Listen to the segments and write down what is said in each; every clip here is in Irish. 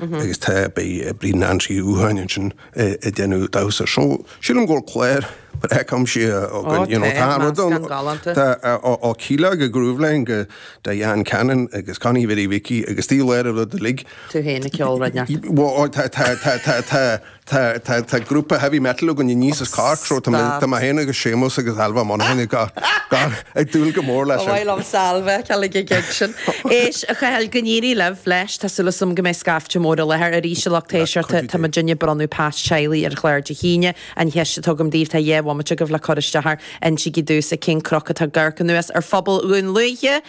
Agus tá, beidh Bríd Nancy Uí Thuatháin ansin ag déanamh damhsa. So, sílim go bhfuil clár breá cuimsitheach againn, you know, tá rud ann, tá ó Kíla go Grooveline go Diane Cannon agus Connie Mhary Mhicí agus taobh leith ar an rud uilig. Tú fhéin ag ceol, ar ndóigh. Bhuel, tá, tá, tá, tá, tá. Tá, tá, tá grúpa heavy metal againn aníos as Cork so tá mé, tá mé féin agus Séamus agus Ailbhe Ó Monacháin ag, ag, ag dúil go mór leis sin. Ba mhaith liom Ailbhe a fheiceáil ag an gig sin. Éist, a Chathail, go n-éirí libh leis, tá súil agam go mbeidh scaifte mór i láthair arís i Loch Ná Taoisearta, cuidiú Dé. Tá muid ag bronnadh pas teaghlaigh ar chlár Dé hAoine. An cheist atá agam daoibh, tá dhá bhomaite agaibh le cur isteach air, insigí domhsa cén cnoc atá ag amharc anuas ar phobal Dhún Lúiche!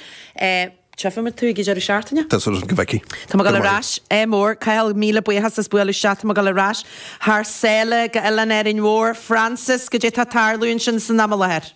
Tchífidh muid thú ag an deireadh seachtaine. Tá súil agam go bhfeicfidh. Tá mé ag dul ar ais. Eh mór, Cathal, míle buíochas as bualadh isteach. Tá mé ag dul ar ais thar sáile go Oileán Árainn Mhór. Frances, goidé atá ag tarlú ansin san am i láthair?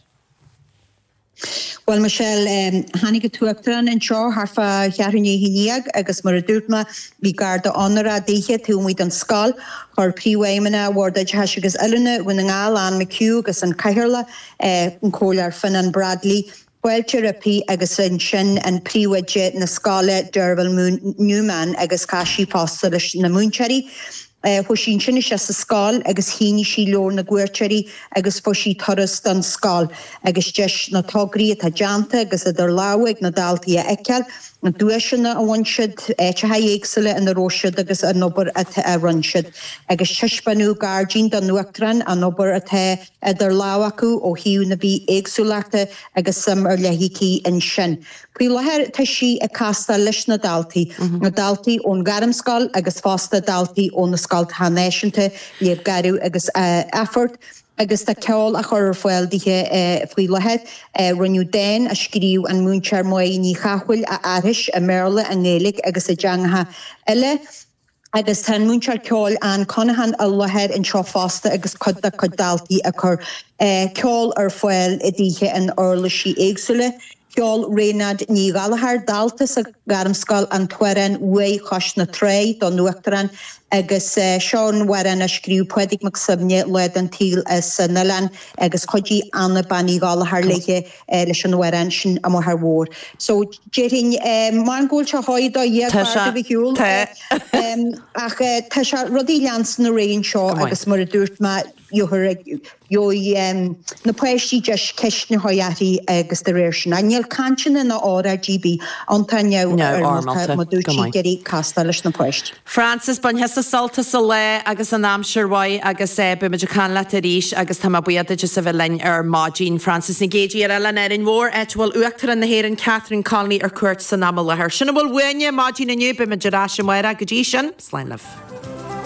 Bhuel, Michelle, em, tháinig an tUachtarán anseo thart fá cheathrú naoi i ndiaidh agus mar a dúirt mé, bhí garda onóra daoithe taobh amuigh don scoil. Chuir Príomhfheidhmeannach Bhord Oideachais agus Oiliúna Dhún na nGall, Anne McHugh agus an Cathaoirleach, eh, an Comhairleoir Fionán Bradley, Fáilte roimpi agus ansin an príomhoide na scoile Derval Newman agus chas sí fosta leis na múinteoirí. Chuaigh sí ansin isteach sa scoil agus shínigh sí leabhar na gcuairteoirí agus fuair sí turas don scoil agus deis na tograí atá déanta agus idir lámha ag na daltaí a fheiceáil, na duaiseanna a bhain siad, áiteacha éagsúla ina raibh siad agus an obair a rinne siad agus taispeánadh gairdín don Uachtarán an obair atá. idir lámh acu ó thaobh na bithéagsúlachta agus suim ar leith aici ansin. Faoi láthair tá sí ag castáil leis na daltaí, na daltaí ón ghairmscoil agus fosta daltaí ó na scoltacha náisiúnta, Leadhb Gharbh agus Athphort, agus tá ceol á chur ar fáil dithe faoi láthair. Rinneadh dán a scríobh an múinteoir Mae Ní Chathmhaoil a aithris i mBéarla, i nGaeilge agus i dteangacha eile. agus tá an múinteoir ceoil Ann Conaghan i láthair anseo fosta agus cuid dá cuid daltaí ag cur ceoil ar fáil daoithe in uirlisí éagsúla. Cheol Raonaid Ní Ghallchóir, dalta sa Ghairmscoil an t-amhrán M'Uaigh Chois na Trá don Uachtarán agus seo an amhrán a scríobh Pádraig Mac Suibhne lá den tsaol san oileán agus chuidigh Anna Bean Uí Ghallchóir léi. eh leis an amhrán sin amuigh thar mhór so déarfainn eh maran go bhfuil sé sháigh do dheartháir Tá sé, agaibh a shiúl tá. eh em ach eh tá sé rudaí leanstan ar aghaidh anseo Go maith. agus mar a dúirt mé gheofar ag gheobhaidh em na páistí deis ceisteanna a chur uirthi agus de réir sin a níl cainteanna ná óráidí ar bith ann tá Neamh-fhoirmeálta, go maith. Frances, Bain thusa sult as an lá agus an aimsir mhaith agus eh beimid ag caint leat arís agus tá mé buíoch duit as a bheith linn ar maidin. Frances Nic Géidigh ar Oileán Árainn Mhór áit a bhfuil Uachtarán na hÉireann Catherine Connolly ar cuairt san am i láthair. Sin a bhfuil uainne maidin inniu, beimid ar ais amárach, go dtí sin, slán libh.